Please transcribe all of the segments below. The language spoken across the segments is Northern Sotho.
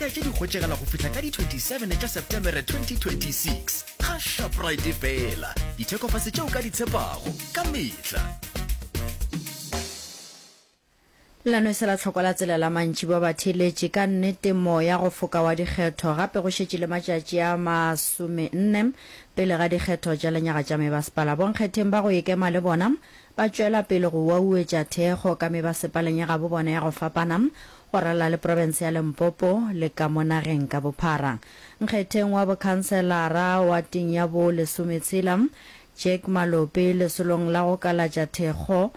ka tše di hwetšegala go fihla ka di 27 tša septemere 2026 ga shoprite fela dithekofase tšeo ka di tshepago ka metla Lano e se la tlhoko la tsela la mantši ba ba theletše ka nnete moya go foka wa dikgetho gape go šetše le matšatši a masome nne pele ga dikgetho tša lenyaga tša mebasepala. Bonkgetheng ba go ekema le bona Ba tšwela pele go wauwetša thekgo ka me ba sepaleng ya gabo bona ya go fapana, go ralala le profense ya Limpopo le ka mo nageng ka bophara. Nkgetheng wa bokhanselara wa ting ya bo lesometshela, Jack Malope, lesolong la go kalatša thekgo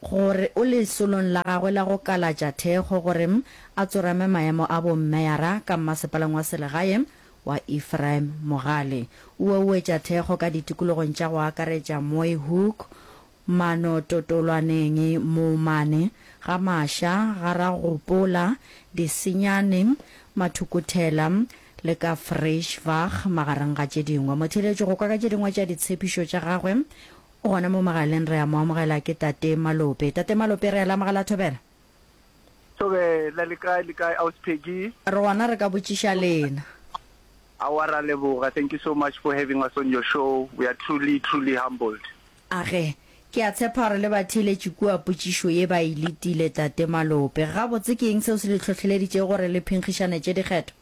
gore, o lesolong la gagwe la go kalatša thekgo gore a tsorame maemo a bo mmeyara ka mmasepaleng wa selegae, wa Ephraim Mogale o ouetša thekgo ka ditikologong tša go akaretša Mooihoek, Manototolwaneng, Moomane, Gamasha, Garagopola, Disenyane, Mathukuthela le ka Vryschwag magareng ga tše dingwe. Motheeletši go kwa ka tše dingwe tša ditshepišo tša gagwe o gona mo mogaleng re a mo amogela ke Tate Malope. Tate Malope re a le amogela Thobela. Tobe, la le kae le kae Ausi Peggy? Rona re ka botšiša lena. Aowa ra leboga, thank you so much for having us on your show, we are truly truly humbled. Age, ke a tshepa gore le ba theeletše kua potšišo ye ba e letile Tate Malope. Gabotse ke eng seo se le hlohleleditšego gore le phenkgišanetše dikgetho?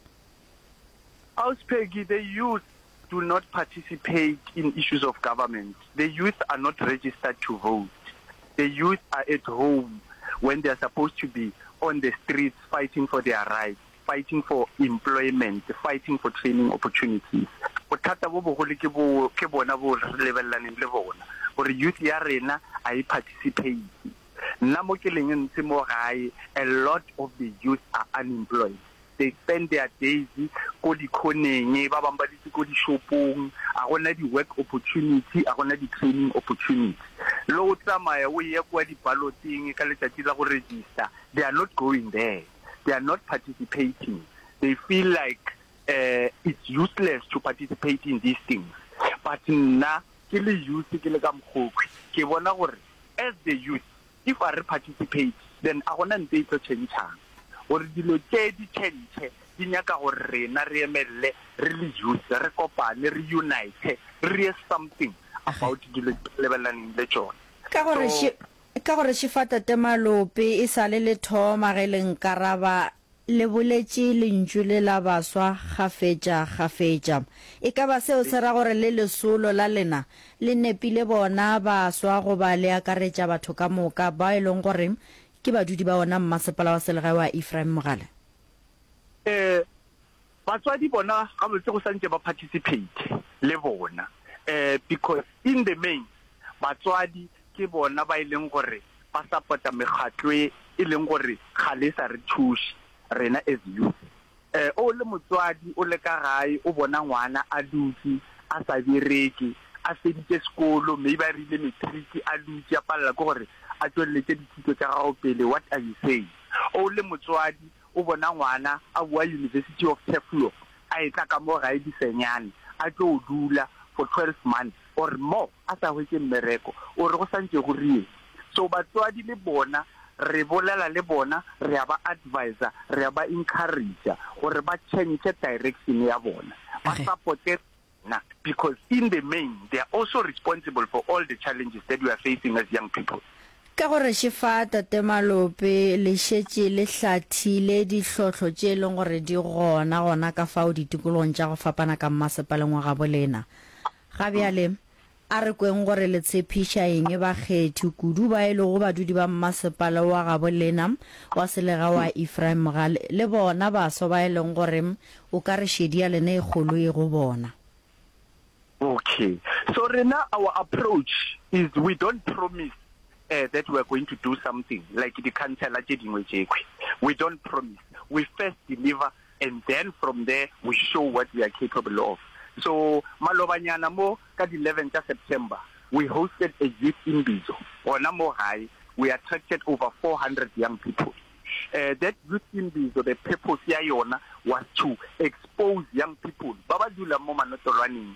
Ausi Peggy, the youth do not participate in issues of government, the youth are not registered to vote, the youth are at home when they are supposed to be on the streets fighting for their rights, fighting for employment, fighting for training opportunities. Bothata bo bogolo ke boo, ke bona boo re lebelelaneng le bona, gore youth ya rena ga e participate. Nna mo ke leng ntse mo gae, a lot of the youth are unemployed. they spend their days ko dikhoneng, ba bang ba dutse ko dishopong, a go na di-work opportunity, a go na di-training opportunity. Le o tsamaya o eya kua di-ballot-eng ka letšatši la go register, they are not going there, they are not participating, they feel like um it's useless to participate in these things. But nna ke le youth ke le ka mokgokwi, ke bona gore as the youth, If a re participate, then a gona ntho e tlo tšhentšhang. Gore dilo tše di tšhentšhe, di nyaka gore rena re emelele re le youth, re kopane, re unite, re dire something about dilo tše re lebelelaneng le tšona. Ka gore, So. Ka gore Shifata Temalope e sale le thoma ge le nkaraba, Le boletše lentšu le la baswa kgafetša kgafetša. E ka ba seo se ra gore le lesolo la lena le nepile bona baswa goba le akaretša batho ka moka bao e lego gore ke badudi ba wona Mmasepala wa Selegae wa Ephraim Mogale? Ee, Batswadi bona gabotse go santše ba participate le bona because in the main batswadi ke bona ba e leng gore ba support-a mekgatlo e e leng gore ga le sa re thuše rena as youth. O le motswadi o le ka gae o bona ngwana a dutše a sa bereke, a feditše sekolo maybe a rile matric a dutše a palela ke gore a tšwelletše dithuto tša gago pele what are you saying? O le motswadi O bona ngwana a boa University of Turfloop a etla ka mo gae disenyane a tlo o dula for twelve months or more a sa hwetše mmereko, o re go sa ntše go rieng? So batswadi le bona re bolela le bona, re a ba adviser, re a ba encourager gore ba change direction ya bona, ba supporte. na because in the main they are also responsible for all the challenges that we are facing as young people. Ka go reše fa Tate Malope le šetše le hlathile dihlohlo tše e leng gore di gona gona ka fao ditikologong tša go fapana ka mmasepaleng wa gabolena ga bjale, A re kweng gore le tshepiša eng bakgethi, kudu ba e lego badudi ba mmasepala wa gabo lena wa selega wa Ephraim ga le, le bona baswa ba e leng gore o ka re šedi ya lena e kgolo e go bona. Ok, so rena our approach is we don't promise uh, that we are going to do something like di-councillor tše dingwe tšekhwi, we don't promise, we first deliver. and then from there we show what we are capable of, so malobanyana mo ka di 11 tša September we hosted a youth imbizo gona mo gae, we attracted over 400 young people, eh, that youth imbizo the purpose ya yona was to expose young people ba ba dulang mo manotolwaneng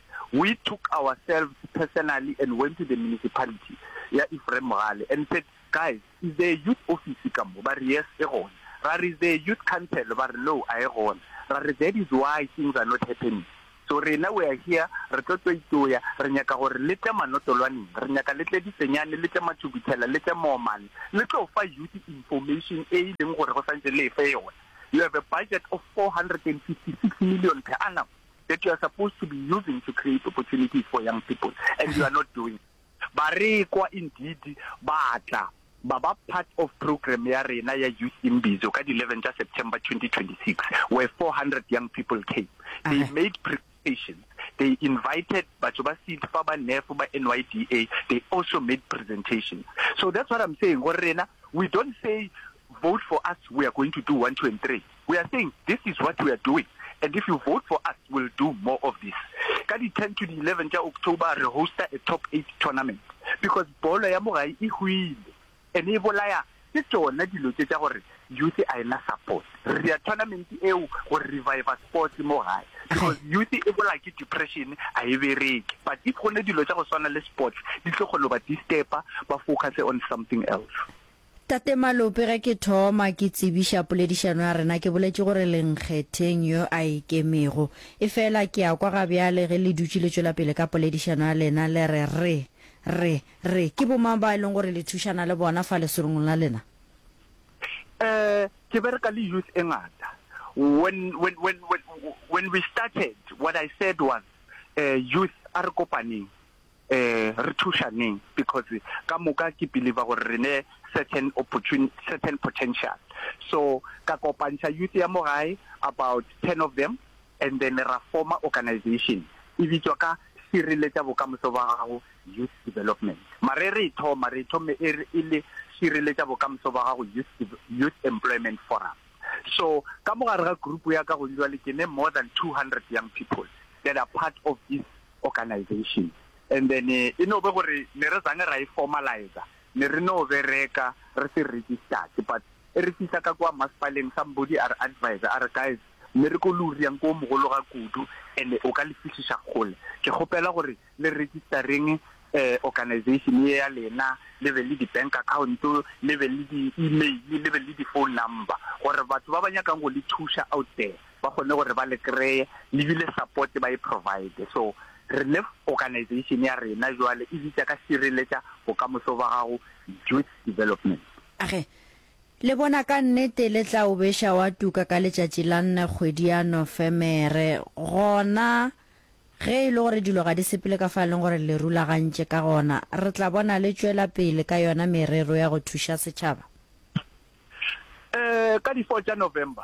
We took ourselves personally and went to the municipality ya Ephraim Mogale and said, Guys, is there a youth office ka mo? Ba re, Yes, e gona. Ra re, Is there a youth council? Ba re, No, a e gona. Ra re, That is why things are not happening. So rena we are here, re tlo toitoya, re nyaka gore le tle Manotolwaneng, re nyaka le tle Difenyane, le tle Mathubutshela, le tle Moomane, le tlo fa youth information e e leng gore go santse le e fe yona. You have a budget of 456 million per annum. that you are supposed to be using to create opportunities for young people and you are not doing barekwa indeed ba tla ba ba part of program ya rena ya youth imbizo ka di 11 tša september 2026 where 400 young people came they made presentations they invited batho ba seed fa ba nef ba nyda they also made presentations so that's what i'm saying gore rena we don't say Vote for us we are going to do one two and three we are saying this is what we are doing and if you vote for us will do more of this ka di ten to di eleven tša October re hosta a top eight tournament because bolo ya mo gae e hwile and e bolaya ke tšona dilo tše tša gore youth a ena support re dira tournament eo go reviva sports mo gae because youth e bola ke depression a e bereke but if go ne dilo tša go swana le sports di tlo kgona go ba disturba ba focus on something else. Tate Malope, ge ke thoma ke tsebiša poledišano ya rena ke boletše gore le nkgetheng yo a ikemego. Efela ke a kwa ga bjale ge le dutše le tšwela pele ka poledišano ya lena le re, Re, re, re, ke bomang bao e lego gore le thušana le bona fa lesolong la lena? Eh, ke bereka le youth e ngata. When, when, when, when, when we started, what I said was, eh, youth, a re kopaneng. Ee, re thušaneng because ka moka ke believer gore re ne certain certain potential. So ka kopantšha youth ya mo gae about ten of them and then ra former organization e bitswa ka Šireletša Bokamoso ba Gago Youth Development. Mara e re e thoma, re e thome e re e le Šireletša Bokamoso ba Gago Youth Youth Employment Forum. So ka mo gare ga group ya ka gona bjale ke ne more than two hundred young people that are part of this organization and then e no be gore ne re zange ra e formalizer ne re no bereka re se registered but e re fihla ka kwa maspaleng somebody a re advise a re guys mme re ko luri yang ko mogolo ga kudu and o ka le fihliša kgole ke kgopela gore le registereng eh organization ye ya lena le be le di-bank account le be le di-email le be le di-phone number gore batho ba ba nyakang go le thuša out there ba kgone gore ba le kreye le bile support ba e provide so re ne organization ya rena jwale e bitša ka šireletša bokamoso ba gago youth development. Age le bona ka nnete le tla o beša wa tuka ka letšatši la nne kgwedi ya Nofemere gona ge e le gore dilo ga di sepele ka fa leng gore le rulagantše ka gona re tla bona le tšwela pele ka yona merero ya go thuša setšhaba? Ee ka di four tša November.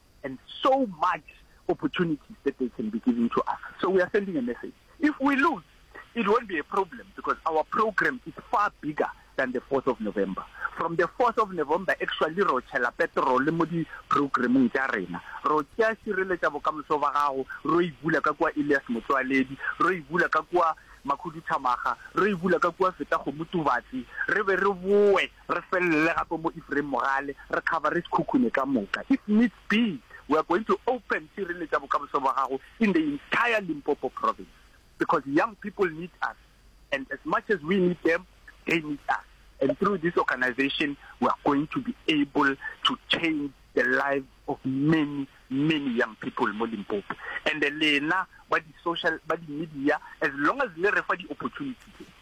and so much opportunities that they can be giving to us. So we are sending a message. If we lose, it won't be a problem because our program is far bigger than the 4th of November. From the 4th of November, actually, ro chela petrol mo di programming tša rena. Ro tšea šireletša bokamoso ba gago, ro e bula ka kwa Elias Motswaledi, ro e bula ka kwa Makhuduthamaga, ro e bula ka kwa Feta Gomutubatsi, re be re boe Re felele gape mo Ephraim Mogale, re kgabare Sekhukhune ka moka. If needs be, we are going to open Sireletša Bokamoso bwa Gago in the entire Limpopo Province because young people need us and as much as we need them, they need us and through this organisation we are going to be able to change the lives of many, many young people mo Limpopo. And lena ba di social, ba di media, as long as le re fa di opportunity tse,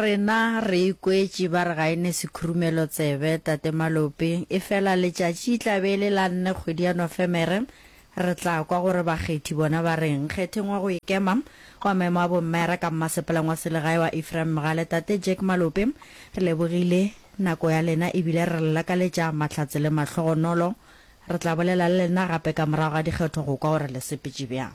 Rena re ikwetše ba re ga e ne sekhurumelo tsebe, Tate Malope, efela letšatši e tla be e le la nne kgwedi ya Nofemere, re tla kwa gore bakgethi bona ba reng. Nkgetheng wa go ikema, wa maemo a bommere ka mmasepaleng wa selegae wa Ephraim Mogale, Tate Jack Malope, re lebogile nako ya lena e bile re le lakaletša mahlatse le mahlogonolo. Re tla bolela le lena gape ka morago ga dikgetho go kwa gore le sepetše bjang.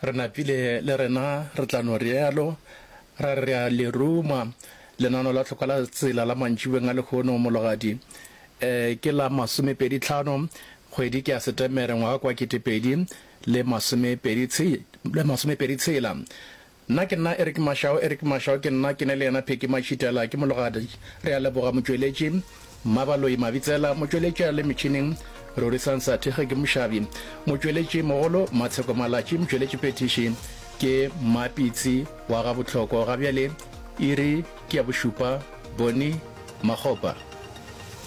Re napile le rena re tla no realo, ra re rea le ruma. Lenano la tlhoka la tsela la mantšibeng a lehono, mologadi, e, ke la masomepedi tlhano, kgwedi ke ya Setemere, ngwaga kwa ketepedi le masomepedi tshe, le masomepedi tshela. Nna ke nna Eric Mashao, Eric Mashao ke nna, ke ne le yena Phecky Mashitela. Ke mologadi. Rea leboga, Motšweletši. Mmabaloi Mabitsela, motšweletša le metšhining, Rorisang Sathege ke mošabi, motšweletši mogolo, Matsheko Malatši, motšweletši phethiši, ke Mmapitsi wa ga Bohloko, ga bjale iri ke ya bošupa, Bonnie Makgopa.